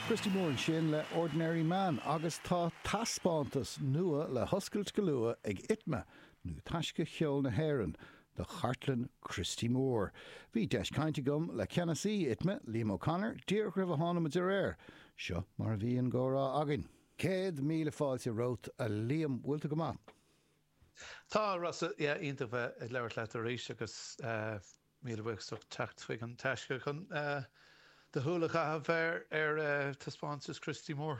Christy Moore ansin le Ordinary Man agus tá taispeántas nua le hoscailt go luath ag Itma, nó Taisce Cheol na hÉireann, do chartlann Christy Moore. Bhí deis caint agam le ceannasaí Itma, Liam O'Connor, díreach roimh a tháinig muid ar aer. Seo mar a bhí an gcomhrá againn. Céad míle fáilte romhat, a Liam. Bhfuil tú go maith? Tá, a Rossa. Yeah, iontach bheith ag labhairt leat arís agus. Míle buíochas do theacht chuig an taisce chun do shúil a chaitheamh ar taispeántas Christy Moore.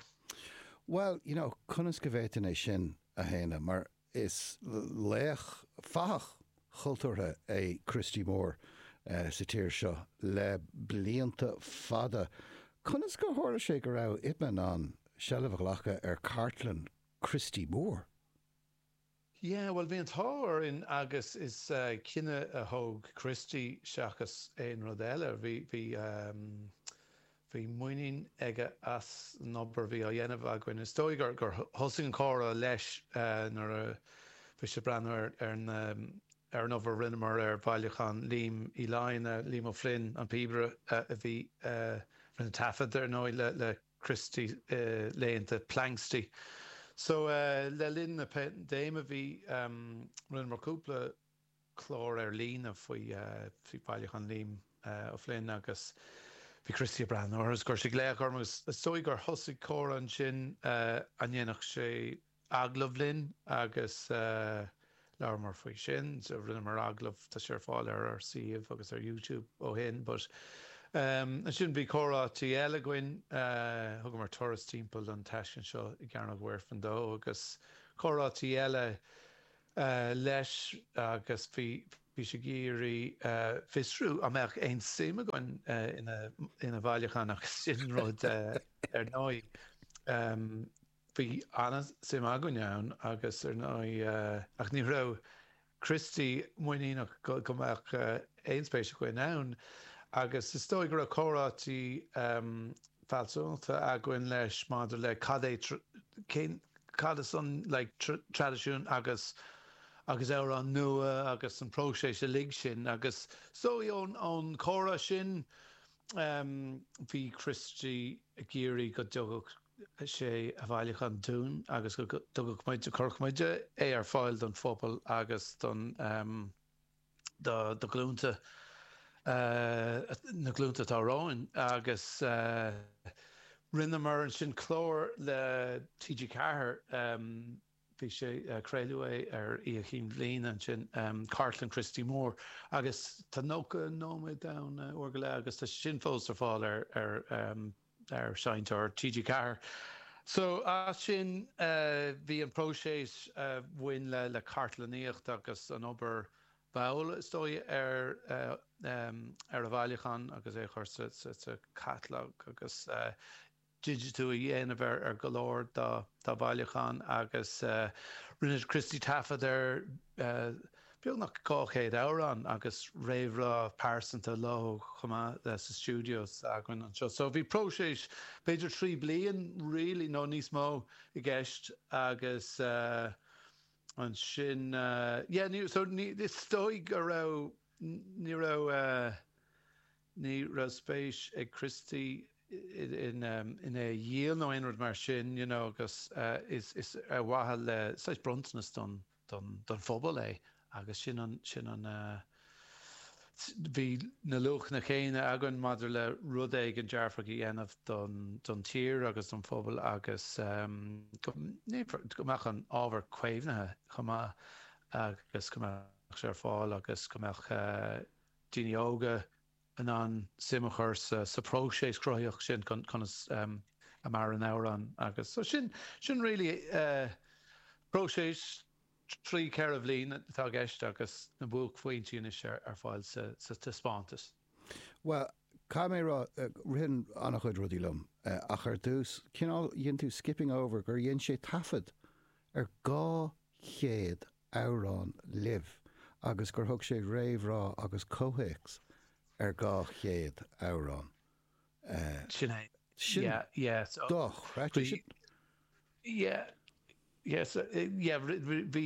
Bhuel, you know, conas go bhféadfainn é sin a shéanadh mar is laoch fathach chultúrtha é Christy Moore sa tír seo le blianta fada. Conas gur tharla sé go raibh Itma in ann seilbh a ghlacadh ar chartlann Christy Moore? Yeah, bhuel, bhí an t-ádh orainn agus is cinneadh a thóg Christy seachas aon rud eile. Bhí muinín aige as an obair a bhí á dhéanamh againn. Is dóigh gur thosaigh an comhrá leis nuair a bhí sé ag breathnú ar an obair a rinneamar ar bhailiúchán Liam Uí Fhloinn, Liam O'Flynn, an píobaire a bhí, a rinne taifead, ar ndóigh, le. Christy laethanta Planxty. So le linn na paindéime bhí, rinneamar cúpla clár ar líne faoi Bhailiúchán Liam Ó Floinn agus bhí Christy ag breathnú orthu is chuir sé glaoch orm agus is dóigh gur thosaigh comhrá ansin an ndéanfadh sé, agallamh linn agus labhramar faoi sin. So rinneamar agallamh, tá sé ar fáil ar ár suíomh agus ar YouTube ó shin but ansin bhí comhráití eile againn, thugamar turas timpeall an taisce anseo i gCearnóg Mhuirfean dó agus comhráití eile leis agus bhí bhí sé ag iarraidh fiosrú an mbeadh aon suim againn ina bhailiúchán agus sin rud ar ndóigh. Bhí an-suim againn ann agus ar ndóigh ach ní raibh Christy muiníneach go mbeadh aon spéis againn ann agus is dóigh go raibh comhráití fealsúnachta againn leis maidir le cad é cén cad is an like traidisiún agus agus amhráin nua agus an próiseas uilig sin agus is dóigh ón ón comhrá sin bhí Christy ag iarraidh go dtugadh sé a bhailiúchán dúinn agus go dtugadh muid, chuirfeadh muid, é ar fáil don phobal agus do na glúnta, na glúnta atá romhainn agus rinneamar ansin clár le TG4, bhí sé, craoladh é ar Oíche Chinn Bhliana ansin, cartlann Christy Moore agus tá 90 nóiméad ann, uair go leath agus tá sé sin fós ar fáil ar, ar, ar Seinnteoir TG4. So as sin bhí an próiseas a bhain le, le cartlannaíocht agus an obair mhall is dóigh ar, ar an bhailiúchán agus é a chur sa, sa, sa chatalóg agus. digitiú a dhéanamh ar go leor dá bhailiúchán agus rinne Christy taifead ar beagnach 200 amhrán agus réamhrá pearsanta leo chomh maith sa stiúideo s'againn anseo. So bhí próiseas b'fhéidir trí bliain really nó níos mó i gceist agus ansin yeah ní so ní is dóigh go raibh ní raibh Ní raibh spéis ag Christy in é a dhíol nó aon rud mar sin you know agus is ar mhaithe le saghas bronntanas don don phobal é agus sin an sin an bhí na luachanna chéanna againn maidir le rud éigin dearfach a dhéanamh don don tír agus don phobal agus go go mbeadh an ábhar caomhnaithe chomh maith agus go mbeadh sé ar fáil agus go mbeadh daoine óga in ann suim a chur sa próiseas cruthaitheach sin, conas a maireann amhrán agus so sin, sin really próiseas trí, ceithre bhliain atá i gceist agus na buaicphointí anois ar fáil sa taispeántas. Bhuel, caithfidh mé a rá, ritheann ana-chuid rudaí liom ach ar dtús, cineál, dhein tú skipping over gur dhein sé taifead ar 200 amhrán libh agus gur thug sé réamhrá agus comhthéacs ar dhá chéad amhrán. Sin é. Sin dochreidte sin. Yeah, yeah, so, yeah, bhí,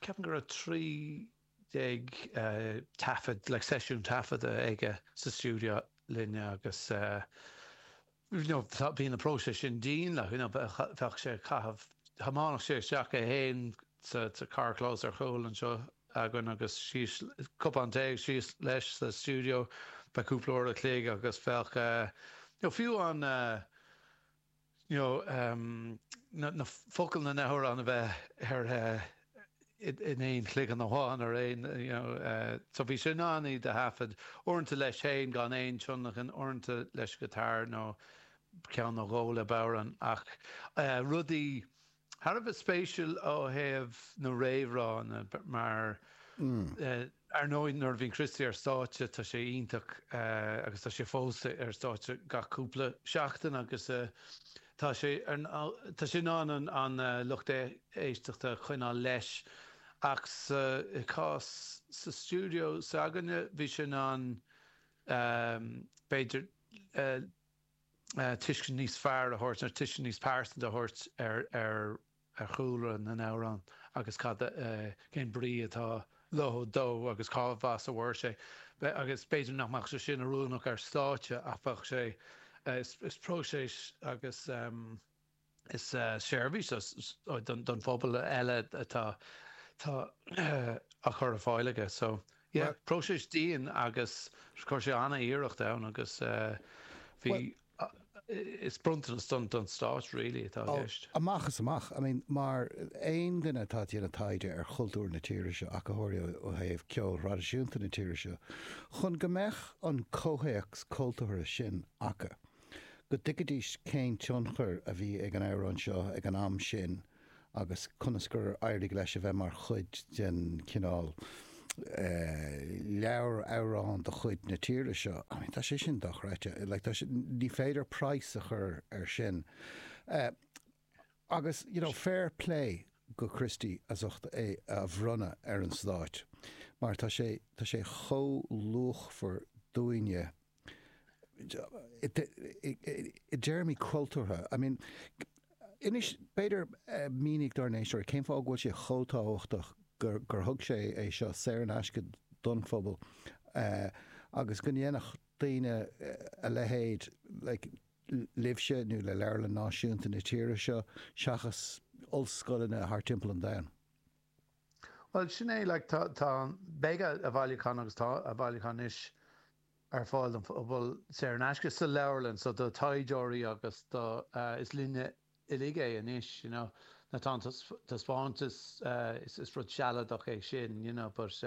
ceapaim go raibh trí déag taifead, like seisiún taifeadta aige sa stiúideo linn agus bhí na próisis sin dian le bheadh sé ag caitheamh thiomáinfeadh sé isteach é féin sa carrchlós ar chúl anseo againn agus síos cupán tae agus síos leis sa stiúideo bheadh cúpla uair a chloig agus bheadh nó fiú an you know na focail na na hamhráin a bheith ar in aon chloigeann amháin ar aon so bhí sé in ann iad a thaifead, uaireanta leis féin gan aon tionlacan, uaireanta leis an guitar nó ceann nó dhó le bodhrán ach rudaí thar a bheith spéisiúil ó thaobh na réamhrá mar Ar ndóigh nuair a bhíonn Christy ar stáitse tá sé iontach agus tá sé fós ar stáitse gach cúpla seachtain agus tá sé in ann an lucht éisteachta a choinneáil leis ach sa chás sa stiúideo s'againne bhí sé in ann b'fhéidir tuiscint níos fearr a thabhairt nó tuiscint níos pearsanta a thabhairt ar ar chúlra na n-amhrán agus cad, cén brí atá leo dó agus cá has a bhfuair sé. Agus b'fhéidir nach mbeadh sé sin oiriúnach ar stáitse ach bheadh sé, is próiseas agus is seirbhís don phobal eile atá á chur ar fáil aige. So yeah, próiseas dian agus chuir sé an-iarracht ann agus bhí, Is bronntanas don Stát really atá i gceist. Amach is amach. I mean mar aon duine atá ag déanamh taighde ar chultúr na tíre seo, acadóirí ó thaobh ceoil thraidisiúnta na tíre seo, chun go mbeadh an comhthéacs cultúrtha sin acu, go dtuigfidís cén tionchar a bhí ag an amhrán seo ag an am sin, agus conas gur éirigh leis a bheith mar chuid den chineál leabhar amhrán de chuid na tíre seo, I mean, tá sé sin dochreidte, like, tá sé, ní féidir praghas a chur air sin. Agus, you know, fair plé do Christy as ucht é a bhronnadh ar an Stát, mar tá sé, tá sé chomh luachmhar dúinne i dtéarmaí cultúrtha, I mean, inis, b'fhéidir, mínigh dár n-éisteoirí cén fáth go bhfuil sé chomh tábhachtach gur, gur thug sé é seo saor in aisce don phobal agus go ndéanfadh daoine a leithéid, like, libhse nó le Leabharlann Náisiúnta na tíre seo seachas ollscoileanna thar timpeall an domhain. Bhuel, sin é, like, tá, tá, beidh a bhailiúchán agus tá a bhailiúchán anois ar fáil don phobal saor in aisce sa leabharlann, so do taighdeoirí agus do, is linne uilig é anois you know nuair atá an taispeántas, is rud sealadach é sin you know but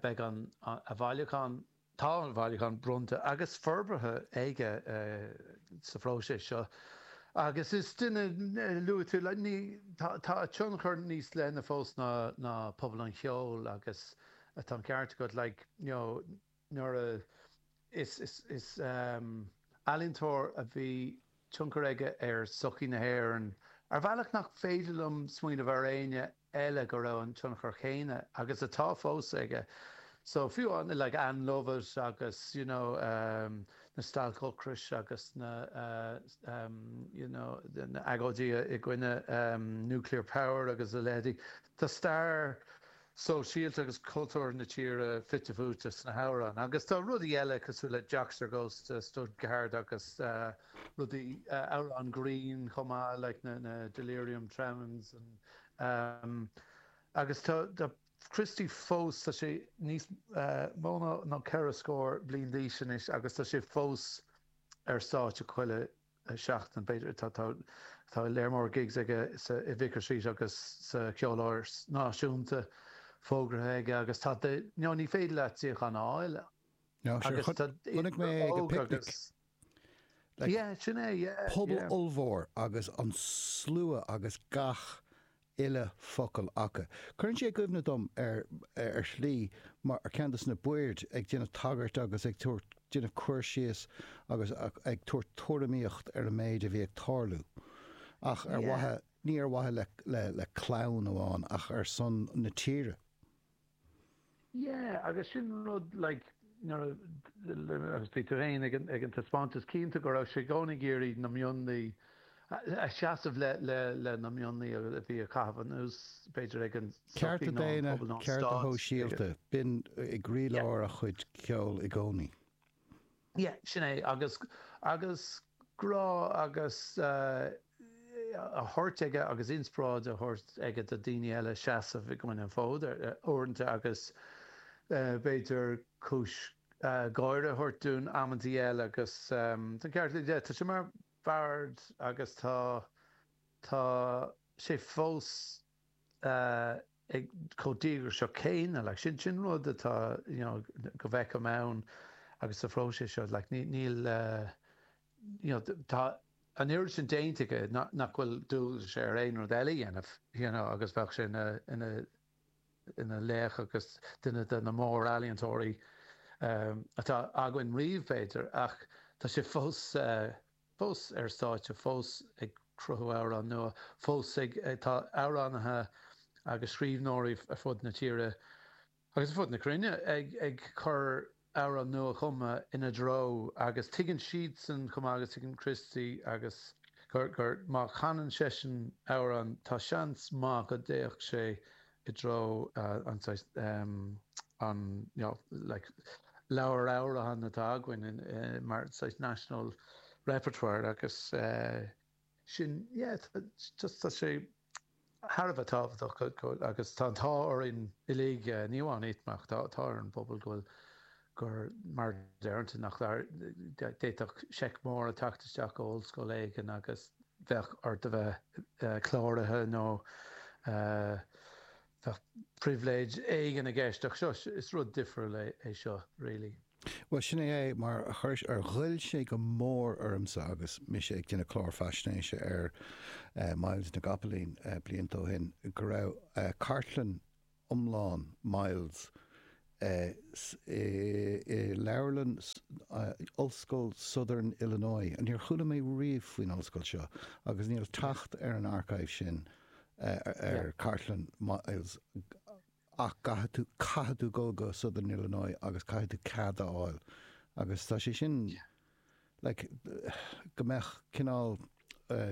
beidh a bhailiúchán, tá a bhailiúchán bronnta agus forbartha aige sa phróiseas seo agus is duine luaigh tú like ní, tá a tionchar níos leithne fós ná pobal an cheoil agus. Tá an ceart agat, like, you know, nuair a, is, is, is ehm ealaíontóir a bhí tionchar aige ar sochaí na hÉireann ar bhealach nach féidir liom smaoineamh ar éinne eile go raibh an tionchar chéanna agus atá fós aige. So fiú amháin like Ann Lovett agus you know ehm na stailc ocrais agus na eh ehm you know na agóidí i gcoinne ehm nuclear power agus a leithéidí. Tá stair. sóisialta agus cultúrtha na tíre fite fuaite sna hamhráin agus tá rudaí eile cosúil le Joxer Goes to Stuttgart agus rudaí, amhráin grinn chomh maith like na Delirium Tremens agus tá Christy fós, tá sé níos mó ná ceithre scór bliain d'aois anois agus tá sé fós ar stáitse chuile seachtain, b'fhéidir. Tá léar mór gigs aige sa Vicar Street agus sa Cheoláras Náisiúnta fógartha aige agus tá y'know, ní féidir leat suíochán a fháil agus tá Chonaic mé ag an picnic. Like, yeah, sin é, yeah. Pobal yeah. ollmhór agus an slua agus gach uile focal aca. Cuireann sé i gcuimhne dom ar ar shlí mar ceann dos na baird ag déanamh tagairt agus ag tabhairt déanamh cur síos agus ag tabhairt tuairimíocht ar an méid a bhí ag tarlú. Ach ar mhaithe ní ar mhaithe le le clann amháin ach ar son na tíre. Yeah agus sin an rud like nuair agus bhí tú fhéin ag an taispeántas cinnte go raibh sé i gcónaí ag iarraidh na mionlaí a seasamh le le le na mionlaí a bhí a chaitheamh anuas b'fhéidir ag an cearta daonna, cearta sóisialta, b'in i gcroílár a chuid ceoil i gcónaí. Yeah, sin é agus agus grá agus eh, a thabhairt aige agus inspioráid a thabhairt aige do daoine eile seasamh an fód ar eh, uaireanta agus eh, b'fhéidir cúis eh, gáire a thabhairt dúinn amantaí eile agus ehm, tá ceart le Tá sé mar bard agus tá tá sé fós ag chomh díograiseach céanna. Like, sin rud atá, you know, go bhfeicim ann agus sa phróiseas seo. Like, ní, níl, you know, tá an oiread sin déanta aige nach, nach bhfuil dualgas air aon rud eile a dhéanamh, you know, agus bheadh sé ina, ina, ina laoch agus duine de na mórealaíontóirí atá againn riamh, b'fhéidir, ach tá sé fós. fós ar stáitse, fós ag cruthú amhrán nua, fós ag. Tá amhránaithe agus scríbhneoirí ar fud na tíre agus ar fud na cruinne ag cur amhrán nua-chumtha ina threo agus tuigeann siadsan chomh maith agus tuigeann Christy agus gur gur má chanann seisean amhrán tá seans maith go dtéann sé i dtreo an saghas an y'know like leabhar amhrán atá againn mar saghas national repertoire agus sin yeah just tá sé thar a bheith tábhachtach agus tá an t-ádh orainn uilig ní amháin ITMA ach tá tá ar an bpobal go bhfuil gur, mar déarfá, nach, d'fhéadfadh seic mór a theacht isteach ó ollscoil éigin agus bheadh ort a bheith cláraithe nó bheadh pribhléid éigin i gceist ach seo, is rud difriúil é seo really. Bhuel sin é é, mar ghoill sé go mór ormsa agus mise ag déanamh clár faisnéise ar Myles na gCopaleen blianta ó shin go raibh cartlann, iomlán Myles i leabharlann Ollscoil Southern Illinois. Níor chuala mé riamh faoin ollscoil seo agus níl teacht ar an archive sin ar chartlann Myles ach caithfidh tú dul go Southern Illinois agus caithfidh tú cead a fháil agus tá sé sin like go mbeadh cineál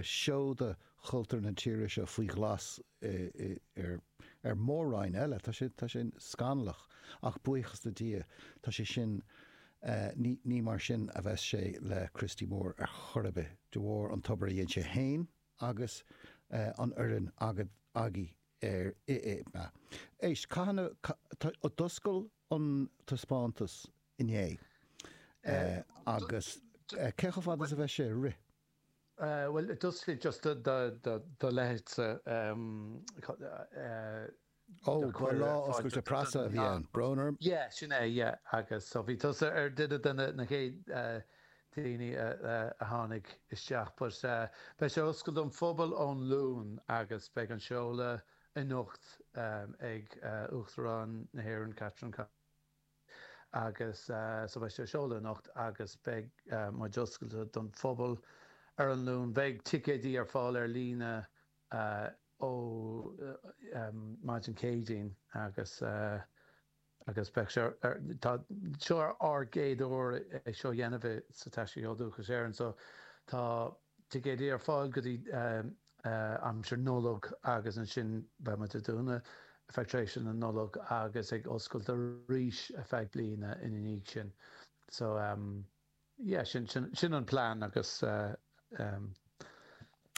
seoda chultúr na tíre seo faoi ghlas ar Mór Roinn eile. Tá sé, tá sé scannalach ach buíochas le Dia tá sé sin, ní, ní mar sin a bheas sé le Christy Moore ar chor ar bith, de bharr an obair a dhéin sé fhéin agus an fhoireann agat, agaibh ar, in ITMA. Éist, cathain a, d'oscail, an taispeántas inné agus cé chomh fada is a bheidh sé ag rith? Bhuel, just le do leithéidse Ó, ba lá oscailte preasa a bhí ann, brón orm. Ie, sin é, ie. Agus so bhí tusa ar duine de na chéad daoine a tháinig isteach. But beidh sé oscailte don phobal ón Luan agus beidh an seoladh anocht ag Uachtarán na hÉireann Catherine Connolly agus so beidh sí á sheoladh anocht agus beidh muid oscailte don phobal ar an Luan. Beidh ticéidí ar fáil ar líne ó maidin Céadaoin agus. agus beidh sé ar, tá, seo ár gcéad uair é seo a dhéanamh i, sa Taisce Cheol Dúchais Éireann so tá ticéidí ar fáil go dtí aimsir Nollag agus ansin beidh muid ag dúnadh ar feadh tréimhse na Nollag agus ag oscailt arís ar feadh bliana ina dhiaidh sin so. Yeah, sin, sin, sin an plean agus eh.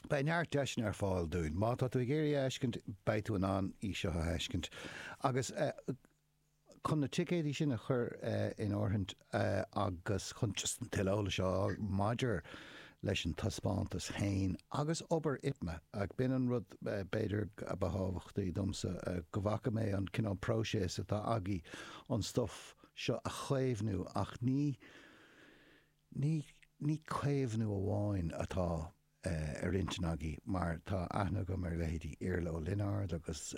Beidh neart deiseanna ar fáil dúinn. Má tá tú ag iarraidh a fheiscint, beidh tú in ann í seo a fheiscint. Agus eh, chun na ticéidí sin a chur eh, in áirithint eh, agus chun just an tuilleadh eolais a fháil maidir leis an taispeántas féin agus obair ITMA, ach b'in an rud eh, b'fhéidir, a ba thábhachtaí domsa, eh, go bhfaca mé an cineál próiseas atá agaibh, an stuif, seo a chaomhnú ach ní ní ní caomhnú amháin atá ar intinn againn mar tá aithne agam ar leithéidí Iarla Ó Lionáird agus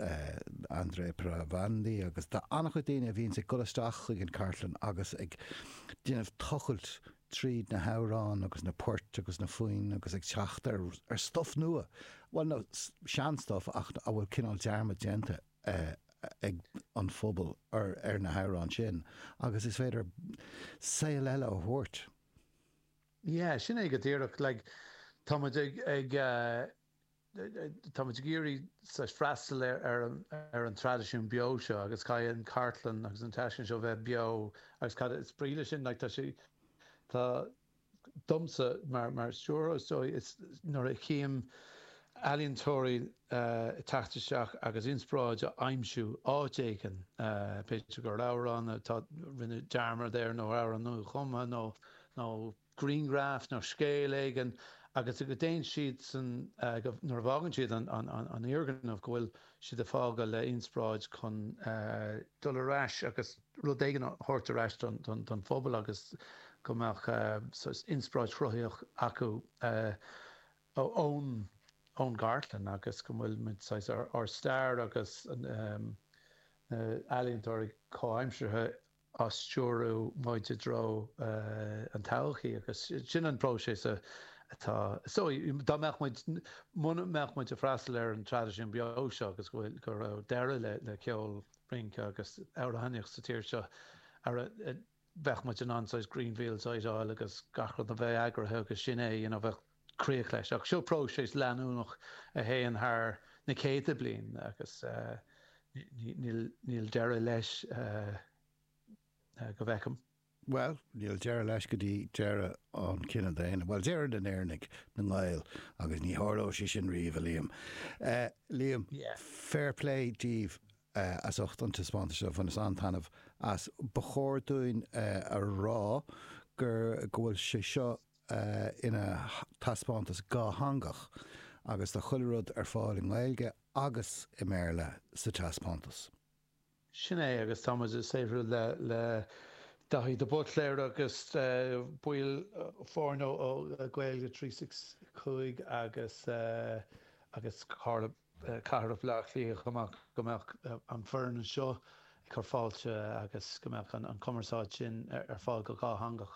Andrea Palandri agus tá an-chuid daoine a bhíonns ag dul isteach chuig an chartlann agus ag déanamh tochailt tríd na hamhráin agus na poirt agus na foinn agus ag teacht ar ar stuf nua bhuel nó sean-stuf ach a bhfuil cineál dearmad déanta ag an phobal ar na hamhráin sin agus is féidir saol eile a thabhairt. Yeah, sin é go díreach, like, tá muid ag, ag eh, tá muid ag iarraidh saghas freastal ar, ar, an, ar an traidisiún beo seo agus caithfidh an cartlann agus an taisclann seo bheith beo agus cad is brí le sin, like, tá sé, tá, domsa mar stiúrthóir is dóigh is nuair a chím ealaíontóirí ag teacht isteach agus inspioráid a aimsiú áit éigin b'fhéidir gur amhrán a ndearnadh dearmad air nó amhrán nuachumtha nó nó grianghraf nó scéal éigin agus a go dtéann siad san go nuair a bhfágann siad an an an fhoirgneamh go bhfuil siad ag fágáil le inspioráid chun dul ar ais agus rud éigin a thabhairt ar ais don phobal agus go mbeadh inspioráid chruthaitheach acu ón gcartlann agus go bhfuil muid, saghas, ár stair agus na ealaíontóirí comhaimseartha á stiúradh muid i dtreo an todhchaí agus sin an próiseas atá so dá mbeadh muid, muna mbeadh muid ag freastal ar an traidisiún beo seo agus go raibh deireadh le ceol rince agus amhránaíocht sa tír seo ah bheadh muid in ann saghas green fields a fheiceáil agus gach rud a bheith eagraithe agus sin é you know bheadh críoch leis ach seo próiseas leanúnach a théann thar na céadta bliain agus níl deireadh leis go bhfeicim. Bhuel, níl deireadh leis go dtí deireadh an chine daonna, bhuel, deireadh na nÉireannaigh, na nGael, agus ní tharlóidh sé sin riamh, a Liam. Liam, fair play daoibh as ucht an taispeántais seo, bhaineas an-taitneamh as. Ba chóir dúinn a rá gur, go bhfuil sé seo ina thaispeántas dhátheangach agus tá chuile rud ar fáil i nGaeilge agus i mBéarla sa taispeántas. Sin é agus tá muid ag saothrú le Daithí de Buitléar agus baill foirne ó Gaeilge 365 agus Comhairle Cathrach Bhleá Cliath chomh maith go mbeadh an foireann anseo ag cur fáilte agus go mbeadh an cumarsáid sin ar fáil go dhátheangach.